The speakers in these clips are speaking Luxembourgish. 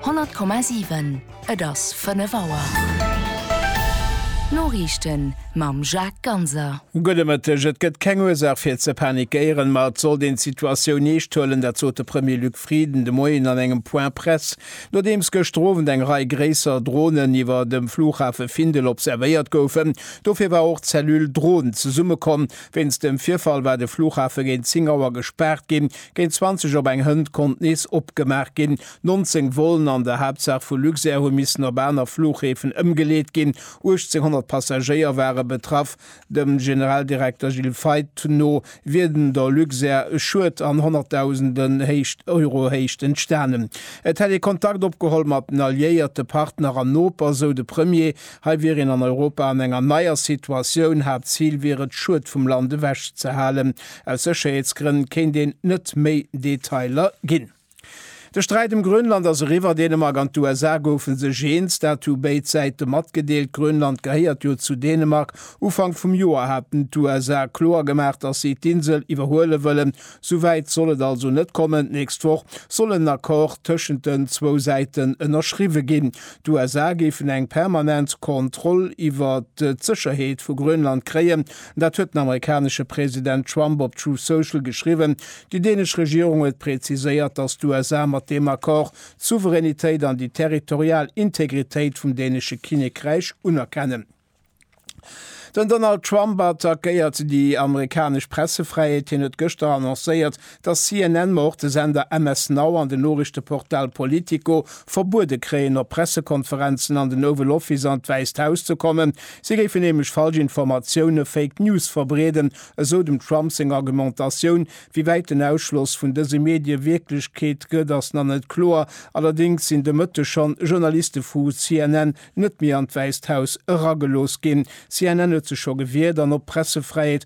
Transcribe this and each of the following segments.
100,7 Et ass 5 Auer. D'Noriichten mam Jacques Ganser. Gudde Mëtteg. Et gëtt keng Ursaach fir ze panikéieren, ma et sollt een d'Situatioun eescht huelen. Dat sot de Premier Luc Frieden de Moien an engem Point Presse, nodeems gëschter Owend eng Rei gréisser Dronen iwwer dem Flughafe Findel observéiert goufen. Dofir war och d'Cellule Drohn zesummekomm. Wéinst dem Virfall war de Flughafe géint 10 Auer gespaart ginn, Géint 20 op eng Hënt konnt nees opgemaach ginn. 19 Vollen an der Haaptsaach vu Luxair hu missen op aner Fluchhäfen ëmgeleet ginn. 1.800 Passagéier ware betraff. Dem Generaldirekter Gilles Feith no wier dem der Luxair e Schued an honnertdausenden Euro Héicht entstanen. Et hätt ee Kontakt opgeholl mat den Alliéierte, Partner an Noper, esou de Premier. Hei wier een an Europa an enger neier Situatioun. Haaptzil wier et, Schued vum Land ewech ze halen. Aus Sécherheetsgrënn kéint een net méi Detailer ginn. De Sträit ëm Grönland ass eriwwer. Dänemark an d'USA goufe sech eens, dat hu béid Säite matgedeelt. Grönland gehéiert jo zu Dänemark. Ufank vum Joer haten d'USA kloer gemaach, datt si d'Insel iwwerhuele wëllen. Sou wäit soll et also net kommen. D'nächst Woch soll en Accord tëschent den zwou Säiten ënnerschriwwe ginn. D'USA géifen eng permanent Kontroll iwwert d'Sécherheet vu Grönland kréien. Dat huet den amerikanesche President Trump op Truth Social geschriwwen. Déi dänesch Regierung huet preziséiert, datt d'USA mat deem Accord d'Souveränitéit an déi territorial Integritéit vum dänesche Kinnekräich unerkennen. Den Donald Trump attackéiert déi amerikanesch Pressefräiheet. Hien huet gëschter annoncéiert, dass CNN, ma och de Sender MS Now an den Noriichteportal Politico verbuede kréien, op Pressekonferenzen, an den Oval Office, an d'Wäisst Haus ze kommen. Si géifen nämlech falsch Informatioune, Fake News, verbreeden, esou dem Trump seng Argumentatioun. Wéi wäit den Ausschloss vun dëse Medie Wierklechkeet gëtt, ass nach net kloer. Allerdéngs sinn de Mëtteg schonn Journaliste vu CNN net méi an d'Wäisst Haus eragelooss ginn. CNN huet sech scho gewiert an op Pressefräiheet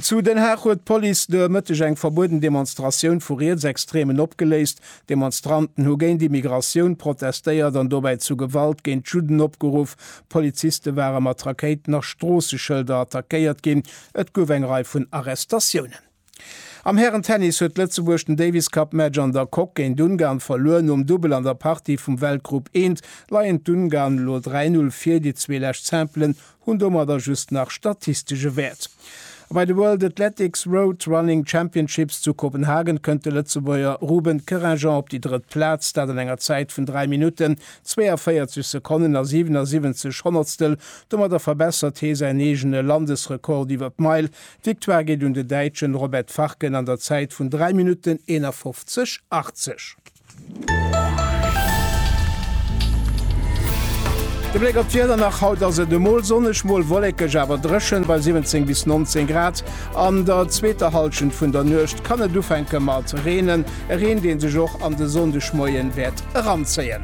Zu Den Haag huet d'Police de Mëtteg eng verbueden Demonstratioun vu Rietsextremen opgeléist. D'Demonstranten hu géint Immigratioun protestéiert an dobäi zu Gewalt géint d'Judden opgeruff. Poliziste ware mat Rakéiten a Stroosseschëlder attackéiert ginn. Et gouf eng Rei vun Arrestatiounen. Am Hären-Tennis huet Lëtzebuerg den Davis-Cup-Match an der Coque géint Ungarn verluer. Nom Dubbel an der Partie vum Weltgrupp I leien d'Ungarn elo 3-0 vir. Déi zwee lescht Simpelen hunn domadder just nach statistesche Wäert. A bei de World Athletics Road Running Championships zu Kopenhagen kënnt de Lëtzebuerger Ruben Kerrageant op déi drëtt Plaz, dat an enger Zäit vun 3 Minutten, 42 Sekonnen a 77 Honnertstel. Domadder verbessert hee säin eegene Landesrekord iwwer d'Meil. D'Victoire geet un de Däitschen Robert Farken an der Zäit vun 3 Minutten, 51, 80. De Bléck op d'Wieder nach, Haut ass et emol sonneg, mol wollekeg awer dréchen bei 17 bis 19 Grad. An der zweeter Hallschent vun der Nuecht kann et ufänke mat reenen, e Reen dee sech och an de Sonndegmoien wäert eranzéien.